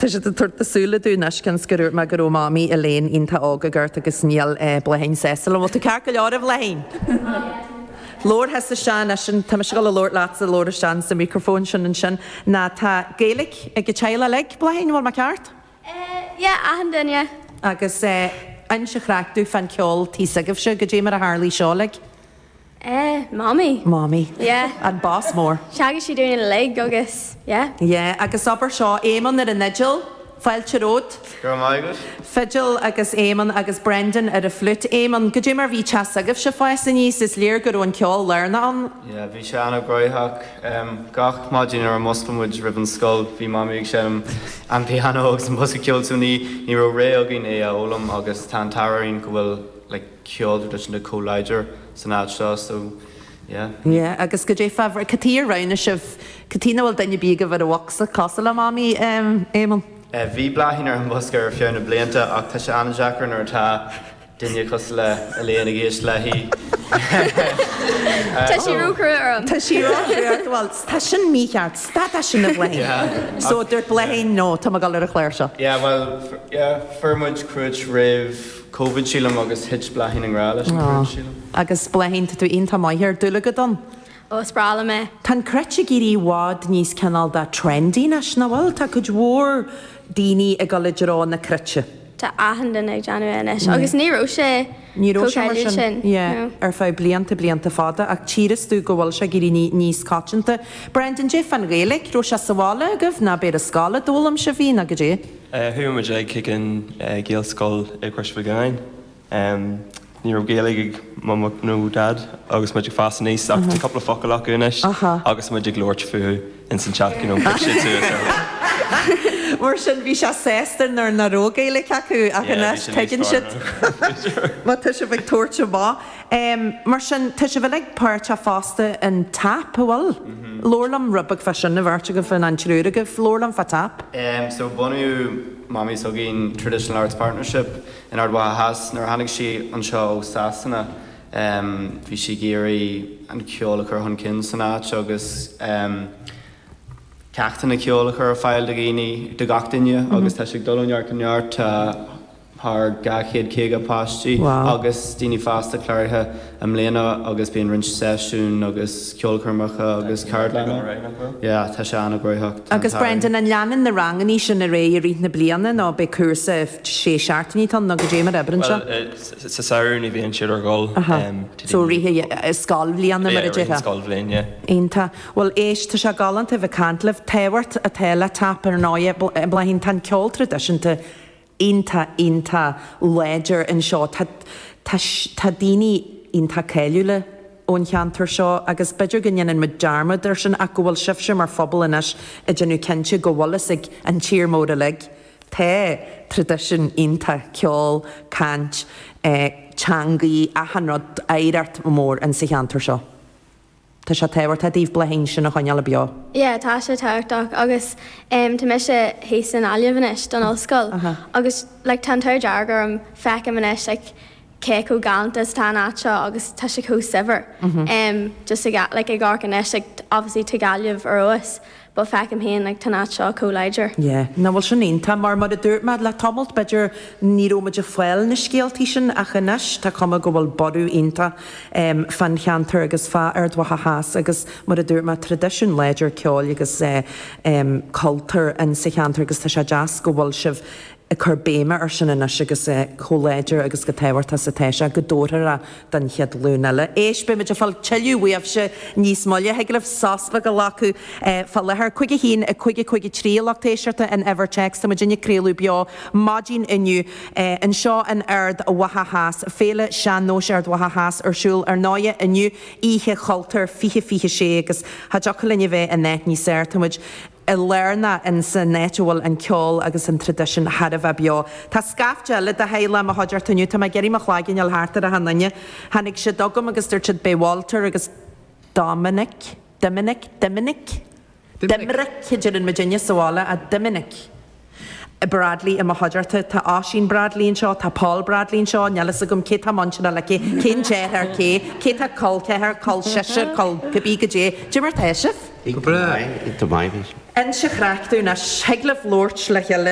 Tá siad ag tabhairt na súile dúinn anois cionn is gur dhúirt mé go raibh Mamaí Elaine iontach óg ag amharc agus níl Bláithín sásta. An bhfuil tú ceart go leor, a Bhláithín? Labhair thusa isteach anois an, tá mise dul a labhairt leatsa a labhair isteach sa microphone sin ansin ná tá Gaeilic ag an teaghlach uilig, Bláithín, an bhfuil mé ceart? Eh, yeah, achan duine. Agus eh, inis craic domh fán ceol tí s'agaibhse, goidé mar a tharlaigh seo, like. Eh, Mamaí. Mamaí. Yeah. An Boss Mór. Theagasc sí dúinn uilig agus, yeah. Yeah, agus abair seo, Éamonn ar an fhidil, fáilte romhat. Go raibh maith agat. Fidil agus Éamonn agus Brendan ar an flute. Éamonn, goidé mar bhí teach s'agaibhse ag fás aníos? Is léir go raibh an ceol lárnach ann. Yeah, bhí sé an-ghnaitheach. Em, gach maidin nuair a mhuscladh muid roimh an scoil, bhí Mamaí ag seinm an pianó agus an bosca ceoil so ní, ní raibh rogha againn é a fhoghlaim agus tá an t-ádh orainn go bhfuil, like, ceol traidisiúnta chomh láidir san áit seo so yeah. Yeah agus goidé fabhrach. Cad tuige ar roghnaigh sibh, cad tuige nach bhfuil duine ar bith agaibh ar an bhocsa, cosúil le Mamaí Éamonn? Bhí Bláithín ar an bhosca ar feadh na blianta ach tá sé an-deacair nuair atá duine cosúil le Elaine ag éisteacht léi. Tá sí róchruaidh orm. Tá sí róchruaidh ort, bhuel tá sin mícheart, stad de sin a Bhláithín! So dúirt Bláithín no, tá mé ag dul ar an chláirseach. Yeah bhuel yeah fuair muid cruit roimh. Covid sílim agus thit Bláithín i ngrá leis an gcruit sílim. Aww agus Bláithín tá tú iontach maith air, dúil agat ann. Ó, is breá liom é. Tá an cruit ag éirí i bhfad níos cineál de trendy anois, nach bhfuil? Tá cuid mhór daoine ag dul i dtreo na cruite. Tá achan duine ag déanamh é anois agus ní raibh sé chomh trendy sin. Ní raibh sé mar sin ar feadh blianta, blianta fada ach tífidh tú go bhfuil sé ag éirí níos coitianta. Brendan, goidé fán Ghaeilic, raibh sé sa bhaile agaibh ná b'é ar scoil a d'fhoghlaim sibh í, ná goidé? Chuaigh muid chuig an Ghaelscoil i gCrois Mhic Lionnáin. Ní raibh Gaeilge ag Mum nó Daid agus muid ag fás aníos ach tá cúpla focal acu anois agus muid ag labhairt fúthu ins an teach, you know, phioc siad suas orthu. Mar sin, bhí sé sásta nuair nach raibh Gaeilge acu ach anois tuigeann siad má tá sibh ag tabhairt amach. Mar sin, tá sibh uilig páirteach fosta in tap, an bhfuil? Labhair liom rud beag fá sin an bheirt agaibh, an triúr agaibh. Labhair liom fá tap. So, bhunaigh Mamaí s'againn, Traditional Arts Partnership, in Ard Mhacha Theas nuair a tháinig sí anseo ó Sasana. Bhí sí ag iarraidh an ceol a chur chun cinn san áit agus ceachtanna ceoil a chur ar fáil do dhaoine, do gach duine agus tá sé ag dul ó neart go neart. Tá. thar 250 páistí agus daoine fásta cláraithe i mbliana agus bíonn roinnt seisiún agus ceolchoirmeacha agus ceardlanna yeah tá sé an-ghnóthach tá an t-ádh Agus Brendan, an leanann na rangannaí sin ar aghaidh i rith na bliana nó beidh cúrsa sé seachtainí ann nó cad é mar a oibríonn seo? Bhuel sa samhradh ní bhíonn siad ar siúl Aha, em to so rith dtí i scoilbhliana mar a yeah rith an déarfá. scoilbhliain yeah. Iontach. Bhuel éist, tá sé galánta a bheith ag caint libh. Tábhacht atá le TAP ar ndóigh. Bláithín, tá an ceol traidisiúnta, iontach iontach láidir anseo. Tá tá tá daoine iontach cáiliúla ón cheantar seo agus b'fhéidir go ndéanann muid dearmad ar sin ach go bhfuil sibhse mar phobal anois ag déanamh cinnte go bhfuil fhios ag an tír mór uilig tá traidisiún iontach ceol, caint, eh teangaí, achan rud oidhreacht mór in sa cheantar seo. Tá sé tábhachtach daoibh Bláithín sin a choinneáil beo. Yeah tá sé tábhachtach agus em tá mise thíos i nGaillimh anois don ollscoil agus like tá an t-ádh dearg orm feicim anois like cé chomh galánta is atá an áit seo agus tá sé chomh saibhir em just i like i gcomhair anois like obviously tá Gaillimh ar fheabhas But feicim féin, like, tá an áit seo chomh láidir. Yeah. Nó, bhuel, sin iontach, mar mar a dúirt mé le tamalt, b'fhéidir, ní raibh muid ag fáil na scéaltaí sin ach anois, tá cuma go bhfuil borradh iontach, em, fán cheantar agus fá Ard Mhacha Theas agus, mar a dúirt mé, traidisiún láidir ceoil agus, eh, em, cultúir in sa cheantar agus tá sé deas go bhfuil sibh, ag cur béime ar sin anois agus é chomh láidir agus chomh tábhachtach is atá sé, go dtabharfar é don chéad ghlúin eile. Éist, beimid ag fáil tuilleadh uaibhse níos moille. Thig libh sos beag a ghlacadh fá láthair. 51553 a lucht éisteachta an uimhir téacs, tá muidinne ag craoladh beo maidin inniu anseo in Ard Mhacha Theas. Féile Sean-Nóis Ard Mhacha Theas ar siúl ar ndóighe inniu, Oíche Chultúir 2026 agus cha dtiocfadh linn a bheith in áit níos fearr. Táimid. i lár na in san áit a bhfuil an ceol agus an traidisiún thar a bheith beo. Tá scaifte eile de theaghlach i mo chuideachta inniu. Tá mé ag iarraidh mo chloigeann a fháil thart ar achan nduine. Tháinig siad chugam agus dúirt siad Beidh Walter agus Dominic, Doiminic, Doiminic? Doiminic. Doimnic a deireann muidinne sa bhaile, a Doiminic. Bradley i mo chuideachta. Tá Oisín Bradley anseo, tá Paul Bradley anseo, níl a fhios agam cé tá muinteartha le cé, cén deartháir ar cé, cé tá col ceathar, col seisear, col cibé. Cad é mar tá sibh. Go breá. Go maith. Inse Chreachta anois. Thig libh labhairt le chéile.